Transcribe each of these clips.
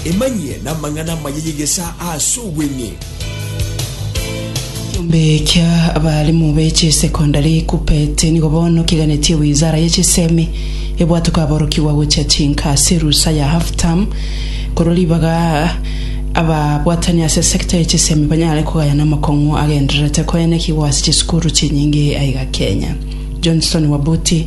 Emanyie namang'ana amaya y'egesa ase obweng'e. Ekiombe kia abalimu be chisecondary Kuppet nigo bono kiganetie wizara ye chisemi ebwate kwaborokigwa gochia chinka ase erusa ya half term korwa ribaga ababwatani ase sector ye chisemi banyare kogayana amakong'u agendererete koenekigwa ase chisukuru chinyinge aiga Kenya. Johnson Wabuti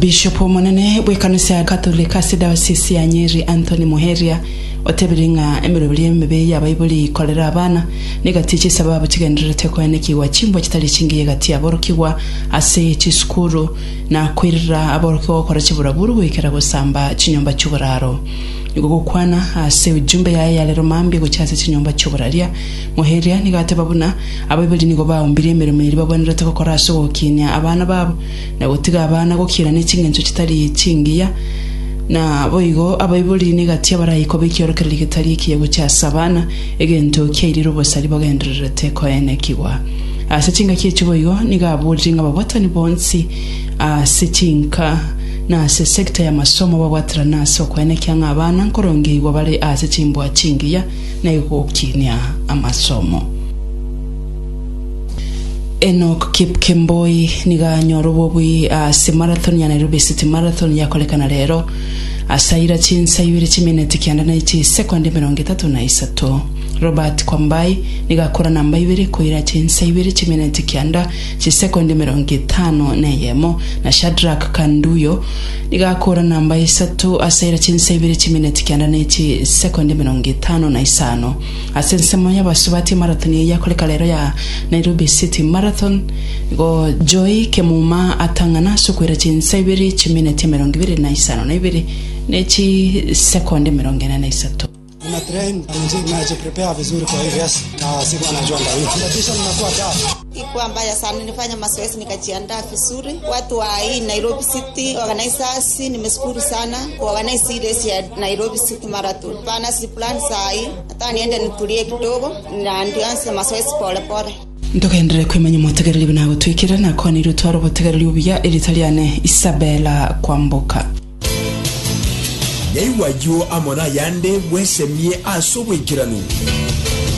Bishop omonene bw'ekanisa ya Katoliki ase diocese ya Nyeri Anthony Muheria otebire ng'a emeroberio emebe y'abaibori ikorera abana negati chisababu chigendererete koenekigwa chimbwa chitari chingiya egati y'aborokigwa ase chisukuru na koirera aborokigwa gokora chiburaburu goikera gosamba chinyomba chi'oboraro. Igo gokwana ase ujumbe yaye yarero mambia gochia ase chinyomba chi'oboraria Ngoeria, nigo ateba buna abaibori nigo baumbirie emeremo eria bagwenerete gokora ase ogokinia abana babo, na gotiga abana gokiira ne chingencho chitari chingiya. Naboigo abaibori negati abaraikoba ekiorokererio getari ekiya gochia ase abana, egento kiairire obosari bagendererete koenekigwa. Ase chingaki echi boigo nigo aborire ng'a ababwatani bonsi ase chinka na ase sector y'amasomo babwaterane ase okoenekia ng'a abana nkorongeigwa bare ase chimbua chingiya, na igokinia amasomo. Enock Kipkemboi nigo anyore obobui ase marathon ya Nairobi City Marathon yakorekana rero, ase aira chinsa ibere chimineti kenda na chisekondi emerongo etato na isato. Robert Kwambai nigo akora namba ibere koira chinsa ibere chimineti kenda chisekondi emerongo etano na eyemo, na Shadrack Kanduyo Nigakora namba isato ase ere chinsa ibere chimineti kianda ne chisekondi emerongo etano na isano. Ase ensemo y'abasubati emarathon eye yakoreka rero ya Nairobi City Marathon, nigo Joy Kemuma atang'ana ase okoira chinsa ibere chimineti emerongo ibere na isano na ibere ne chisekondi emerongo ene na isato. Ntogenderere kwemanya omotegereri buna agotwikera, nakwanire otware obotegereri obuya, erieta riane Isabella Kwamboka. Yaigwa ayio amo nayande, bwesemie ase obwaikeranu.